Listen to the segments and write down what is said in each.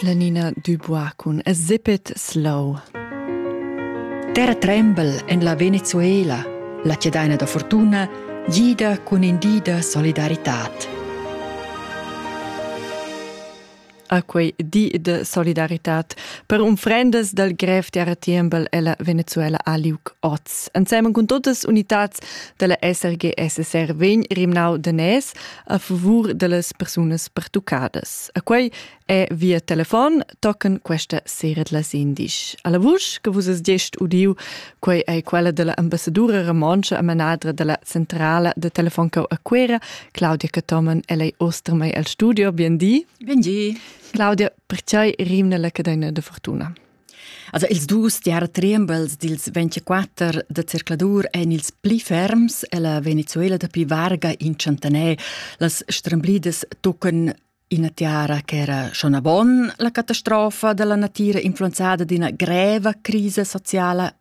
La Nina Dubois cun A Zippet Slow. Terra tremble en la Venezuela, la cedaina da fortuna, gida cun indida solidaritad. a quei di de solidaritat per unfrendas dal grev terra tiembel ella Venezuela a Liuc Oz. Ensemen cun totas unitads della SRG SSR vegn Rimnau de Nes a favur dellas persunas pertuccadas. A quei è via telefon tocken questa sera la sendisch. Alla vusch che vus es gest udiu, quei è quella della ambassadura romontscha e manadra della centrala de Telefoncau a Quera, Claudia Catomen, e lei ostermei al studio. Bien di. Bien di. Claudia, perciai rimna la cadena de fortuna? Also ils dus diartriembels dils 24 da circladur ein ils pli ferms ella Venezuela dapi varga in centener. Las stramblidas tocan ina tiara che era schon a bon la catastrofa della natira influenzada d'ina greva crisa sociala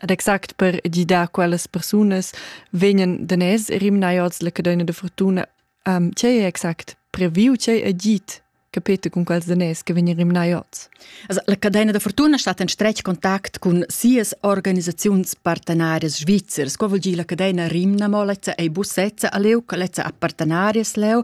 Ed exact per gidar quellas persunas vegnan daners rimnai oz la cadena de fortuna. Um, che è exact previu, che è git capete con quels daners che vengono rimnai oz? Also, la cadena da fortuna sta in stretg contact con sias organisazions partenarias svizzers. Qua vuol dire la cadena rimna mo lezza ei busezza a leu, lezza a partenarias leu,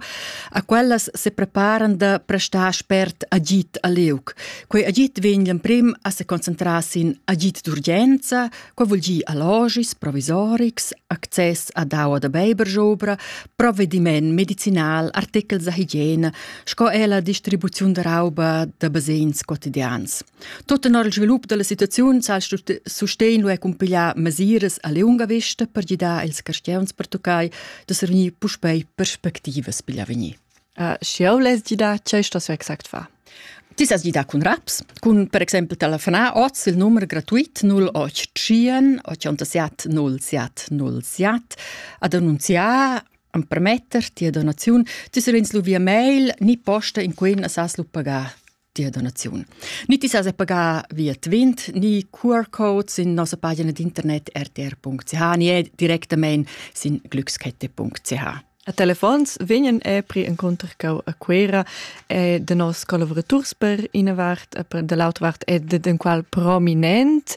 a quellas se preparan da prestar spert agit a leu. Quei agit vegn l'emprim a seconcentrar sin agit d'urgenza, quei vul dir allogis, provisorics, access a daua da beiberjobra, provvediment medicinal, artechels da higiene, sco er la distribuziun da rauba da basegns quotidians. Tot tenor il svilup della situaziun sa sustegn lu e cumpigliar mesiras a lunga vista per gidar ils carstgeuns per toccai da servir puspei perspectivas pigl avegnir. Sch'jeu less di dar tgei stos exact far? Ti sas di dar cun raps, cun per exempel telefonar oz il numero gratuit 0800 87 07 07 ad annunziar a permetter tia donaziun. Ti savens lu via mail ni posta in quei na sas lu pagar. Tia donaziun. Ni ti sas pagar via Twint, ni QR-Code sin nossa pagina d'internet rtr.ch ni directamain sin glückskette.ch. A telefons vegnan epri encontrer cau a Cuera e de nos collaborators per ina vart e per dall'altra vart e de den qual prominent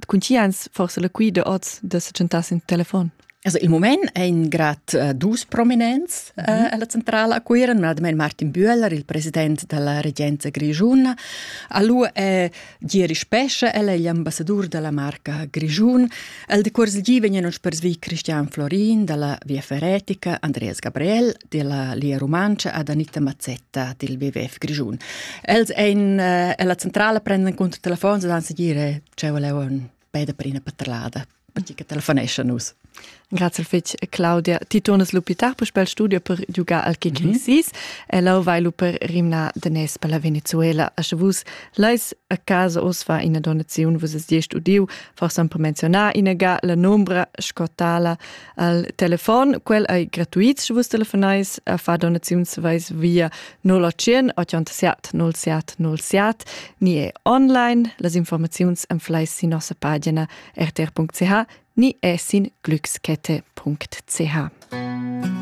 Cun ti ans forse la qui de oz de setgentas in telefon? Also il moment è in grad uh, dus prominents uh, mm. alla centrala a Cuiran, admen Martin Bühler, il president della regenza grigiuna, alu è Giri Spesche, el è l'ambassador della marca Grigiun, el de Cuors Lgi vegnan uns per svi Christian Florin dalla Via Ferretica, Andreas Gabriel, della Lia Romancia ad Anita Mazzetta del BWF Grischun. Els ein eh, alla centrala prendono conto telefon e dan a dire ciao leo un pede per una paterlada perché che telefonesce nus. Grazie fetch Claudia. Ti turnes l'ospitar per spel studio per giugar al kick mm -hmm. e lau vai lu per rimna de nes per la Venezuela. A sche vus leis a casa osfa ina donazione vus es diesch udiu, forse per menzionar ina ga la nombra scotala Al telefon, quel ei gratuits, sche vus telefonais a far donaziuns, vais via 081 87 07 07 ni è online. Las informaziuns en flais sin nossa pagina rtr.ch ni è sin glückskette.ch.